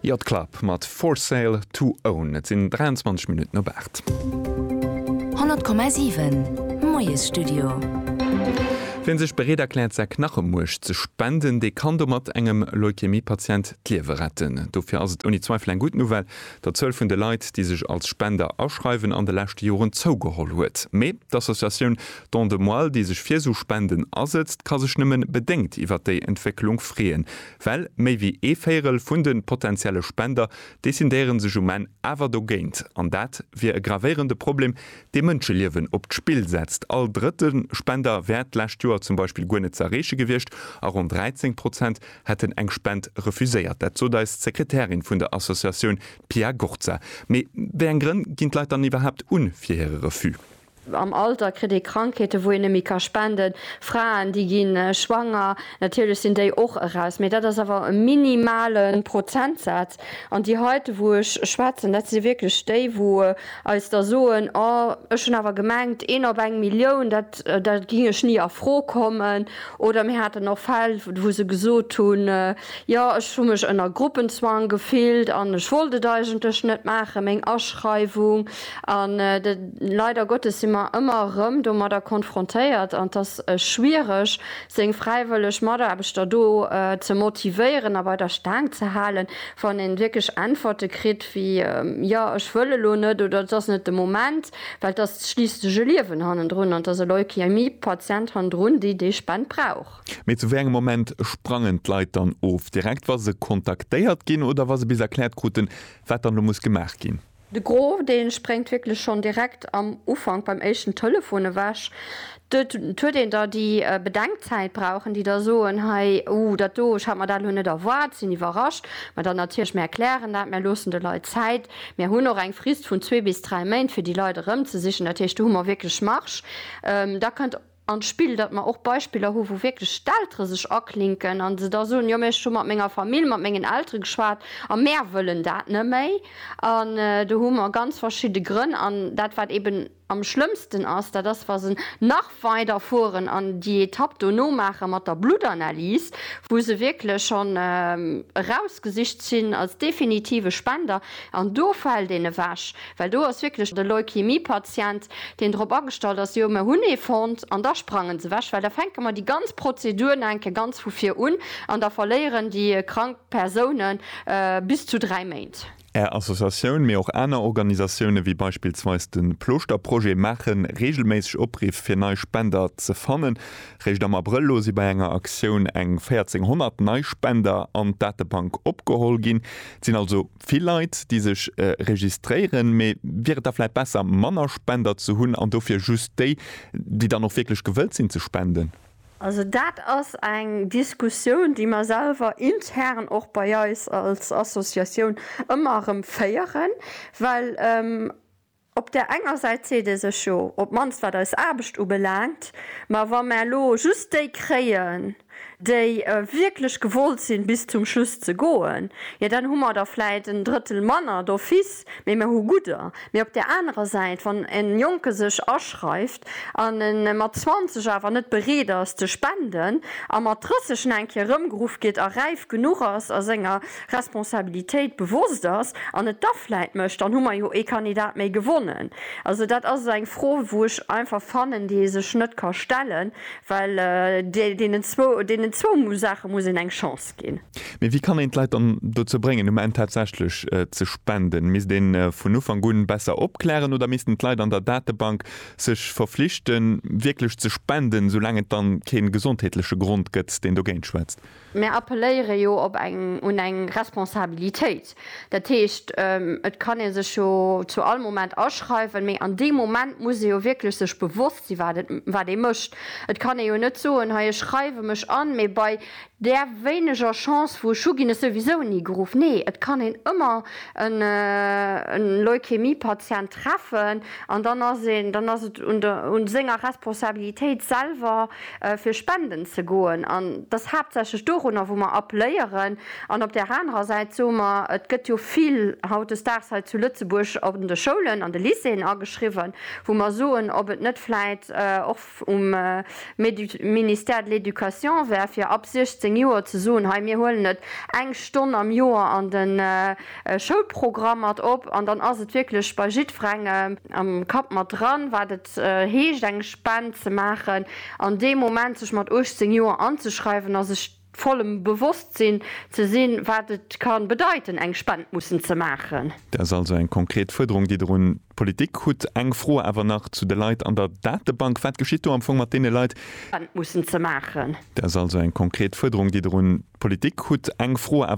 Yacht Club mat For Sale To Own. Et sinn 23 Minutten op 8. 100,7 Moiesstudio. Wien sech bereet erkläert säi Knachemuerch ze spenden, dee kann domat engem Leukämie-Patient d'Liewe retten. Dofir ass et ouni Zweifel eng gutt Nouvelle, datt d'Zuel vun de Leit, déi sech als Spender aschreiwen, an de leschte Joren zougeholl huet. Mee d'Associatioun Don de Moelle, déi sech fir esou Spenden asëtzt, ka sech nëmmen bedéngt iwwert déi Entwécklung freeën. Well méi wéi ee Véirel vun de potenzielle Spender decidéiere sech um Enn awer dogéint. An dat wier e gravéierende Problem, dee Mënscheliewen op d'Spill setzt. All drëtte Spender wär d'lescht Joer zum Beispill guer net ze erreeche gewiescht a ronn 13 Prozent hätten eng Spend refuséiert. Dat sot eis d'Sekretärin vun der Associatioun, d'Pia Gorza. Mee wéi eng Grënn ginn d'Leit dann iwwerhaapt un fir hire Refus? Am Alter kritt ee Krankheeten, wou een net méi ka spenden. Fraen, déi gi schwanger. Natierlech sinn déi och eraus, mee dat ass awer e minimale Prozentsaz. An déi heite, wou ech schwätzen, dat si wierklech déi, wou eis da soen, Oh, ech hunn awer gemengt, een op eng Millioun, da géing ech ni a Fro kommen. Oder mir haten och Fäll, wou se gesot hunn, Jo, ech hu mech ënner Gruppenzwang gefillt an ech wollt et eigentlech net maachen, meng Aschreiwung. An leider Gottes si mer ëmmer erëm domadder konfrontéiert, an et ass schwiereg, seng fräiwëlleg Mataarbechter do ze motivéieren a bei der Staang ze halen, wann ee wierklech Äntwerte kritt wéi, Jo, ech wëll elo net oder et ass net de Moment. Well et ass schliisslech e Liewen hannendrun an et ass e Leukämie-Patient hannendrun, déi déi Spend brauch. Mee zu wéi engem Moment sprangen d'Leit dann of? Direkt wa se kontaktéiert ginn oder wa se bis erkläert kruten, wat dann elo muss gemaach ginn? De Gros dee spréngt wierklech schonn direkt am Ufank beim éischten Telefon ewech. Et huet een da déi Bedenkzäit brauchen, déi da soen, hei, uh, dat do, ech hat mer dat elo net erwaart, sinn iwwerrascht. Mä dann natierlech, mir erklären dat, mir loossen de Leit Zäit, mir hunn och eng Frist vun zwee bis dräi Méint, fir déi Leit erëmzesichen. Dat heescht, do hu mer wierklech Marge. Da kënnt. an d'Spill, datt mer och Beispiller hu wou wierklech d'Eltere sech aklinken a se da soen, jo mä ech hu mat menger Famill, mat mengen Eltere geschwat a mär wëllen dat net méi. An do hu mer ganz verschidde Grënn. An dat wat eben am schlëmmsten ass, dat ass wa se nach weider fueren an déi Etapp dono maache mat der Bluttanalys, wou se wierklech schonn erausgesicht sinn als definitive Spender an do fält een ewech. Well do ass wierklech e Leukämie-Patient, deen drop agestallt ass, jo, mer hunn ee fonnt, an da sprangen se ewech, well da fänke mer déi ganz Prozedur nach eng Kéier ganz vu vir un an da verléieren déi krank Persoune bis zu dräi Méint. Är Associatioun, mee och aner Organisatioune wéi beispillsweis de Plooschterprojet maache reegelméisseg Opriff fir nei Spender ze fannen. Réischt am Abrëll elo si bei enger Aktioun eng 1.400 nei Spender an d'Datebank opgeholl ginn. Et sinn also vill Leit déi sech registréieren, mee wier et da vläit besser manner Spender ze hunn an dofir just déi, déi dann och wierklech gewëllt sinn ze spenden? Also dat ass eng Diskussioun déi mer selwer intern och bei eis als Associatioun ëmmer erëm féieren, well Op där enger Säit seet ee sech jo, op d'mannst wat eis Aarbecht ubelaangt, ma wa mer elo just déi kréien, déi wierklech gewollt sinn, bis zum Schluss ze goen, jo dann hu mer der vläit en Drëttel manner d'office, mee mer hu gudder. Mee op där anerer Säit, wann e Jonke sech aschreift, an en mat 20 awer net bereet ass ze spenden a mat 30 en eng Kéier erëmgeruff gétt a räif genuch ass a senger Responsabilitéit bewosst ass an et da vläit mécht, dann hu mer jo ee Kandidat méi gewonnen. Also dat ass eng Fro wou ech einfach fannen, déi ee sech net ka stellen, well deenen zwou Saache muss een eng Chance ginn. gestëtzt ginn. Mee wéi kann een d'Leit dann dozou bréngen, um Enn tatsächlech ze spenden? Misst ee vun Ufank un besser opklären oder missten d'Leit an der Datebank sech verflichten, wierklech ze spenden, esoulaang et da kee gesondheetleche Grond gëtt, deen dogéint schwätzt? Mär appelléiere jo op eng, un eng Responsabilitéit. Dat heescht, et kann ee sech jo zu all Moment aschreiwen, mee an deem Moment muss ee jo wierklech sech bewosst sinn, wat ee mécht. Et kann ee jo net soen, hei ech schreiwe mech an, mee bei Där wéineger Chance vu Schuh ginn ech souwisou ni geruff. Nee, et kann een ëmmer e Leukämie-Patient treffen an dann ass een, dann ass et un der, un senger Responsabilitéit selwer fir spenden ze goen an et ass haaptsächlech dorunner wou mer appléieren. An op där anerer Säit soe mer, et gëtt jo vill hautdesdaags hei zu Lëtzebuerg an de Schoulen, an de Lycéeën ageschriwwen, wou mer soen, ob et net vläit och, um Ministère de l'Education wär, fir ab 16 Joer ze soen, hei mir huelen et eng Stonn am Joer an de Schoulprogramm mat op. An dann ass et wierklech bei jiddwerengem am Kapp mat dran, wat et heescht, eng Spend ze maachen. An dee Moment sech mat 18 Joer anzeschreiwen ass, ech. vollem Bewosstsinn ze sinn, wat et ka bedeiten, eng Spend mussen ze maachen. Dat ass also eng konkret Fuerderung, déi Der un d'Politik hutt. Eng Fro awer nach zu de Leit an der Datebank. Wat geschitt do am Fong mat deene Leit? Spend mussen ze maachen. Dat ass also eng konkret Fuerderung, déi Der un d'Politik hutt. Eng Fro awer.